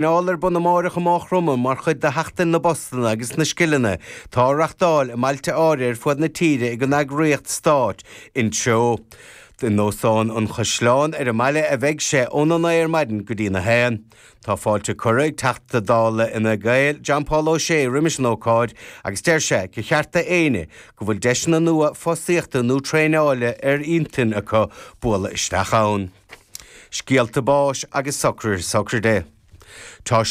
traenáil ar bun amáireach i Máigh Chromtha mar chuid de Sheachtain na bPostanna agus na Scileanna atá á reachtáil i mbailte áirithe ar fud na tíre ag an eagraíocht stáit, Intreo. I nÓstán an Chaisleáin ar an mbaile a bheidh sé óna naoi ar maidin go dtí'n a haon. Tá fáilte curtha ag Teachta Dála Fhine Gael, John Paul O'Shea roimis an ócáid agus deir sé gur cheart do éinne go bhfuil deiseanna nua fostaíochta nó traenála ar intinn acu bualadh isteach ann. Scéalta báis agus socruithe sochraide. Tá,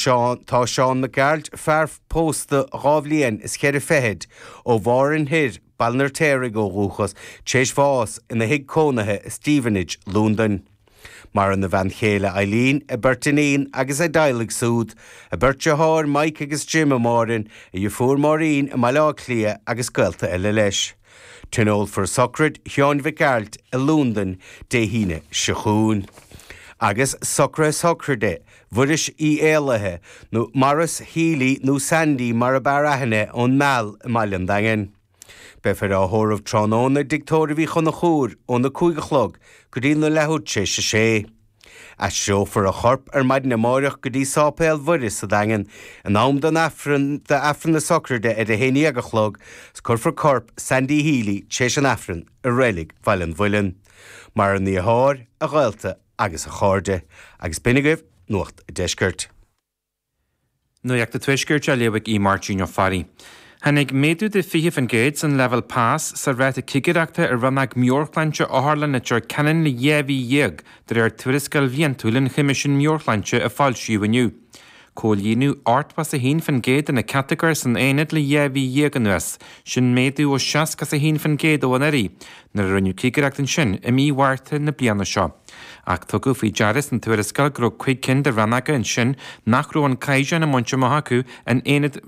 tá Seán Mac Gearailt, fear pósta dhá bhliain is cheithre fichid, ó Mhárthain Thoir, Baile an Fheirtéaraigh ó dhúchas, tar éis bháis ina thigh cónaithe i Stevenage, Lúndain. Maireann a bhean chéile Eileen, a beirt iníon agus a dteaghlaigh súd, a beirt deartháir Mike agus Jim i Márthain, a dheirfiúr Máirín i mBaile Átha Cliath agus gaolta eile leis. Tionólfar sochraid Sheáin Mhic Gearailt i Lúndain Dé hAoine seo chugainn, agus socruithe sochraide Mhuiris Uí Éalaithe, nó Maurice Healy nó Sandy mar ab fhearr aithne, ón Meal i mBaile an Daingin. Beifear á thórramh tráthnóna i dtigh tórraimh Uí Chonchúir óna cúig a chlog go dtí na leathuair tar éis a sé. Aistreofar a chorp ar maidin amáireach go dtí Sáipéal Mhuire sa Daingean in am don, do Aifreann na Sochraide ar a haon dhéag a chlog 's cuirfear corp Sandy Healy tar éis an Aifrinn i Reilig Bhaile an Mhuilinn. Maireann a dheartháir, a ghaolta agus a chairde. Agus b'in agaibh Nuacht an Deiscirt. Nuacht an Tuaiscirt á léamh ag Máirtín Ó Fearraigh. Tháinig méadú de 20% san leibhéal pas sa ráta cigireachta i rannóg meabhairshláinte Otharlann Leitir Ceanainn le dhá mhí dhéag, de réir tuarascáil bhliantúil an Choimisiúin Meabhairshláinte a foilsíodh inniu. Comhlíonadh 81% de na catagóir san aonad le dhá mhí dhéag anuas, sin méadú ó 61% ó anuraidh, nuair a rinneadh cigireacht ansin i mí Mhárta na bliana seo. Ach tugadh faoi deara san tuarascáil go raibh cúig cinn de rannóga ansin nach raibh an caighdeán á mbaint amach acu in aonad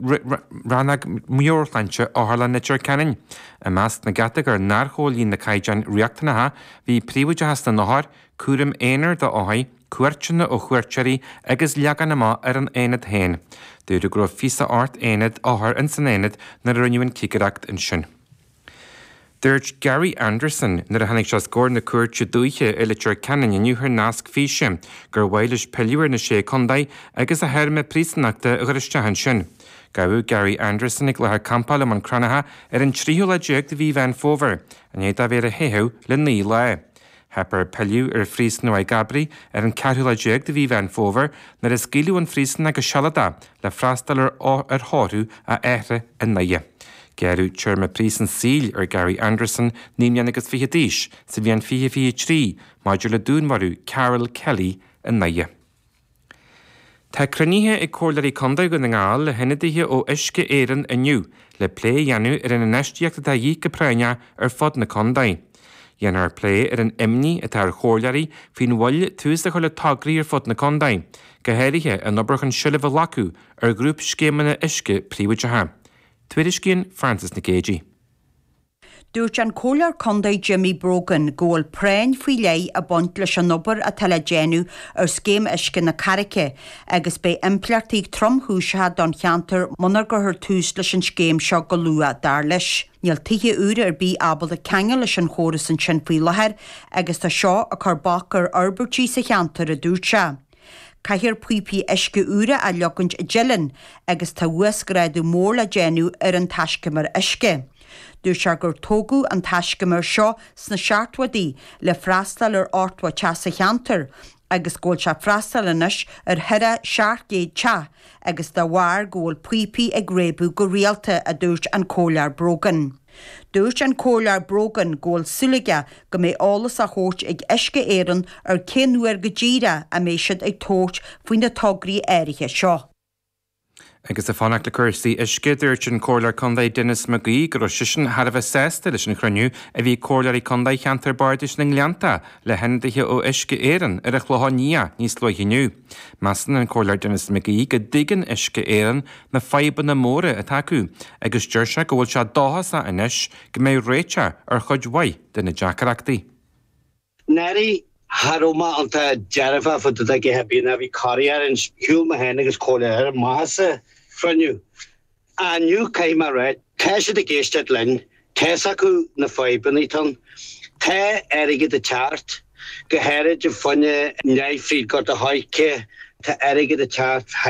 Rannóg Meabhairshláinte Otharlann Leitir Ceanainn. I measc na gcatagóir nár chomhlíon na caighdeáin riachtanacha bhí príobháideachas na n-othar, cúram aonair d'othair, cuairteanna ó chuairteoirí agus leagan amach ar an aonad féin. Dúradh go raibh 28 aonad, othar ins an aonad nuair a rinneadh an cigireacht ansin. Dúirt Gary Anderson nuair a tháinig sé os comhair na cúirte dúiche i Leitir Ceanainn inniu thar nasc físe gur mhaith leis pilleadh ar na Sé Contae agus a théarma príosúnachta a chur isteach ansin. Gabhadh Gary Anderson ag láthair campála i mBun Cranncha ar an tríú lá déag de mhí Mheán Fómhair, i ndiaidh dó a bheith ar a theitheadh le naoi lá. Theip air pilleadh ar Phríosún Mhaigh gCabraí ar an 14 lá de Mhí Mheán Fómhair nuair a scaoileadh ón phríosún é go sealadach le freastal ar thórramh a athara i nDoire. Gearradh téarma príosúin saoil ar Gary Anderson, naoi mbliana agus fiche d'aois, sa bhliain 2023, maidir le dúnmharú Karol Kelly i nDoire. Tá cruinnithe ag Comhairleoirí Contae Dhún na nGall le hionadaithe ó Uisce Éireann inniu le plé a dhéanamh ar an infheistíocht atá de dhíth go práinneach ar fud na contae. Dhéanfar plé ar an imní atá ar Chomhairleoirí faoin mhoill tús a chur le tograí ar fud na contae, go háirithe an obair chun seilbh a ghlacadh ar ghrúpscéimeanna uisce príobháideacha. Tuairiscíonn Frances Nic Géadaigh. Dúirt an Comhairleoir Contae Jimmy Brogan go bhfuil práinn faoi leith ag baint leis an obair atá le déanamh ar Scéim Uisce na Carraice agus beidh impleachtaí tromchúiseacha don cheantar munar gcuirthear tús leis an scéim seo go luath, dar leis. Níl tithe úra ar bith ábalta ceangal leis an chóras ansin faoi láthair agus tá seo ag cur bac ar fhorbairtí sa cheantar, a dúirt sé. Caithfear píopaí uisce úra a leogaint i dTeileann agus tá uasghrádú mór le déanamh ar an taiscumar uisce. Dúirt sé gur tógadh an taiscumar seo sna seachtóidí le freastáil ar 80 teach sa cheantar agus go bhfuil sé ag freastáil anois ar thaire 700 teach agus dá bharr go bhfuil píopaí ag réabadh go rialta, a dúirt an Comhairleoir Brogan. Dúirt an Comhairleoir Brogan go bhfuil súil aige go mbeidh eolas á thabhairt ag Uisce Éireann ar cén uair go díreach a mbeidh siad ag tabhairt faoi na tograí áirithe seo. Agus ag fanacht le cúrsaí uisce, dúirt an Comhairleoir Contae Denis McGee go raibh seisean thar a bheith sásta leis an chruinniú a bhí ag Comhairleoirí Contae Cheantar Bardais na nGleannta le hionadaithe ó Uisce Éireann ar an Chlochán Liath níos luaithe inniu. Measann an Comhairleoir Denis McGee go dtuigeann Uisce Éireann na fadhbanna móra atá acu agus deir sé go bhfuil sé dóchasach anois go mbeidh réiteach ar chuid mhaith de na deacrachtaí. I ndáiríre tá mé iontach dearfa fá dtaobh de ag ithe bia ná bhí corraí orainn, shiúil mé féin agus comhairleoirí amach as an chruinniú. Inniu caithfidh mé a rá, Tá siad ag éisteacht linn, tá's acu na fadhbanna atá ann, tá airgead ag teacht, go háirid an fine ndeifrí Gort an Choirce, tá airgead ag teacht high,